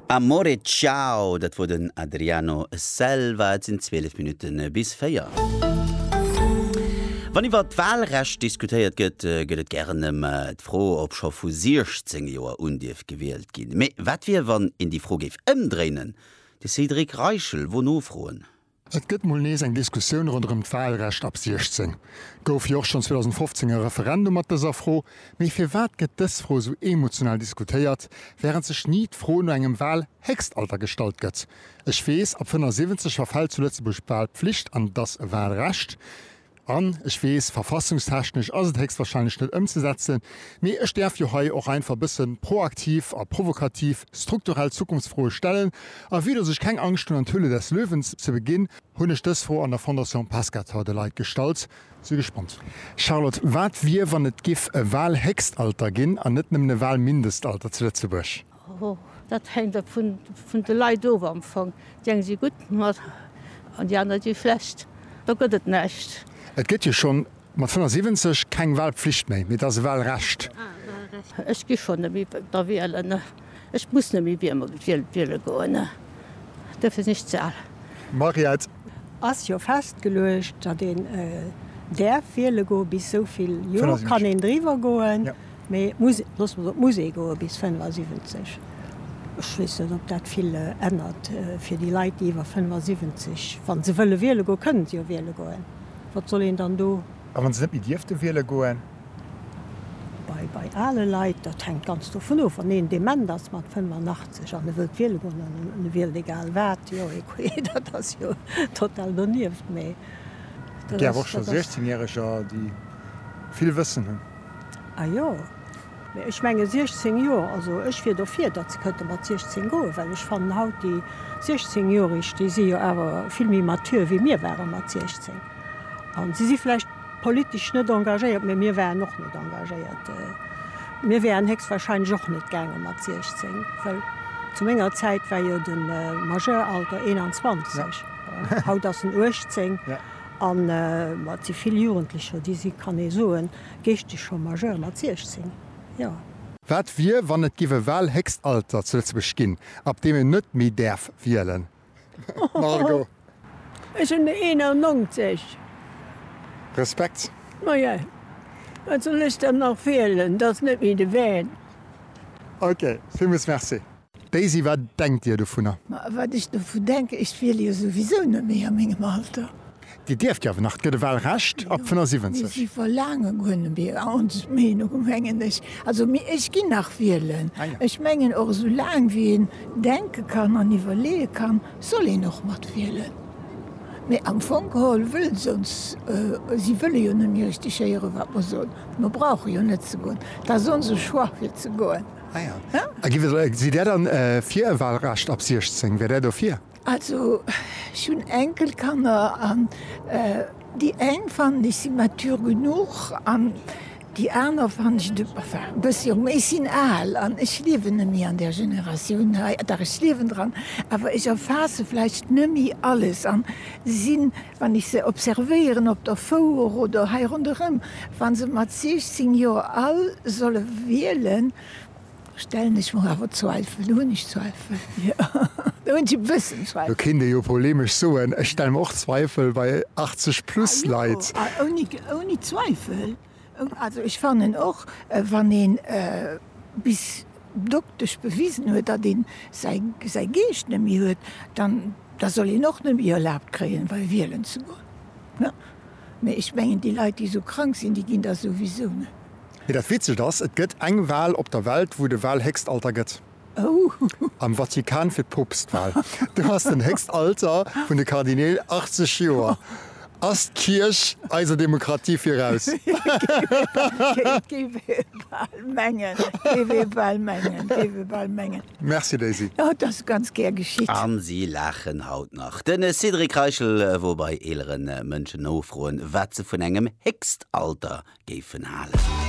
Amore Ciao, dat wor den Adriano Selva. Et sinn 12 Minutten bis 4. Wann iwwer d'Wahlrecht diskutéiert gëtt, gëtt et gären ëm d'Fro, ob scho vu 16 Joer un dierf gewielt ginn. Mee wat wier, wann een déi Fro géif ëmdréinen? De Cédric Reichel wor nofroen. Et gëtt mol nees eng Diskussioun ronderëm d'Wahlrecht ab 16. Gouf jo och schonn 2015 e Referendum mat dëser Fro. Mee firwat gëtt dës Fro esou emotional diskutéiert, während sech ni d'Fro no engem Wahlhéchstalter gestallt gëtt? Ech weess, ab 75 verfält zu Lëtzebuerg d'Wahlpflicht an et ass e Wahlrecht. An, ech weess, verfassungstechnesch ass et héchstwahrscheinlech net ëmzesetzen, mee ech däerf jo hei och einfach e bësse proaktiv a provokativ strukturell Zukunftsfroe stellen. A vue dass ech keng Angscht hunn an d'Höhle des Löwen ze beginn, hunn ech dës Fro an der Fondation Pescator de Leit gestallt. Si gespannt sinn. Charlotte, wat wier, wann et giff e Wahlhéchstalter ginn an net nëmmen e Wahlmindestalter zu Lëtzebuerg? Hoho, dat hänkt ab vun de Leit of am Fong. Déi eng si gutt mat an déi aner si schlecht. Do gëtt et näischt. Et gëtt jo schonn mat 75 keng Walpflicht méi, mee et ass e Walrecht. Ech gi schonn net méi da wielen. Ech muss net méi wiele goen. Duerfir sinn ech ze al. Mariette. Ass jo festgeluecht, datt een däerf wiele goe bis esou vill Joer. Kann een driwwer goen, Mee d'Musek, loosse mer op d'Musek goe bis 75. Ech weess net, ob dat vill ännert fir déi Leit, déi iwwer 75, wa se wëlle wiele goen, kënne se jo wiele goen, wat soll een dann do. A wa se net méi dierfte wiele goen? Bei ale Leit, dat hänkt ganz dovun of, wann een dement ass mat 85 an e wëllt wiele goen an e wielt egal wat, jo, écouez, dat ass jo total donieft. Mee dat ass. Et gäf och scho 16 Järeger, déi vill Wëssen hunn. A jo. Mee ech menge 16 Joer, also ech wier dofir, datt se kënnte mat 16 goen, well ech fannen haut déi 16 Joerig, déi si jo awer vill méi mature wéi mir ware mat 16. A si si vläicht politesch net engagéiert, mee mir waren och net engagéiert. Mir wäeren héchstwahrscheinlech och net gaange mat 16, well zu menger Zäit war jo de Majeuralter 21, haut ass en 18. An et si vill Jugendlecher, déi si, kann ee soen, geeschteg scho majeur mat 16, jo. Wat wier, wann et giff e Wahlhéchstalter zu Lëtzebuerg ginn, ab deem een net méi däerf wielen? Margot. Ech hunn de 91. Respekt. Maja, wat soll ech dann nach wielen? Dat ass net méi de Van. Ok, villmools Merci. Daisy, Wat denkt Dir dovunner? Ma wat ech dovun denken, ech wiele jo souwisou net méi a mengem Alter. Dir dierft jo awer nach, et gëtt e Wahlrecht ab 75. Si verlaange guer net méi, ons Meenung mengen ech. Also mee ech ginn nach wielen. Ech mengen och esou laang wéi een denke kann an iwwerleeë kann, soll een och mat wielen. Mee am Fong geholl wëllen se ons, si wëlle jo net méi richteg héieren, wat mer soen. Mer brauche jo net ze goen. Et ass onse Choix fir ze goen. Sidd Dir dann fir e Wahlrecht ab 16? Wäert Där dofir? Also ech hunn Enkelkanner an déi eng fannen ech si mature genuch an déi aner fannen ech de, enfin e bësse jonk. Mee ech sinn al an ech liewen nemmi an där Generatioun hei. Dach ech liewen dran, awer ech erfaasse vläicht nemmi alles an sinn Wann ech se observéieren op der Fouer oder hei ronderëm, wa se mat 16 Joer all solle wielen, stellen ech mer awer Zweifel. Do hunn ech Zweifel, jo, do hunn ech e bëssen Zweifel. Do kéint ee jo polemesch soen, ech stelle mer och Zweifel bei 80 plus Leit. Ouni Zweifel. Also ech fannen och, wann ee bis doktesch bewisen huet, datt ee säi Geescht net méi huet, da soll een och net méi erlaabt kréien, wei wielen ze goen. Mee ech mengen, déi Leit, déi esou krank sinn, déi ginn da souwisou net. Mee dat Witzegt ass, et gëtt eng Wal op der Welt, wou de Walhéchstalter gëtt. Am Vatikan fir d'Poopstwal. Do ass den héchst Alter vun de Kardineel 80 Joer. Ass d'Kierch eiser Demokratie viraus? Et géif ee bal mengen, et géif ee bal mengen, et géif ee bal mengen. Merci Daisy. Oh, et ass ganz gär geschitt. A si laachen haut nach. De Cédric Reichel wor bei eelere Mënschen nofroen, wat se vun engem héchst Alter géifen halen.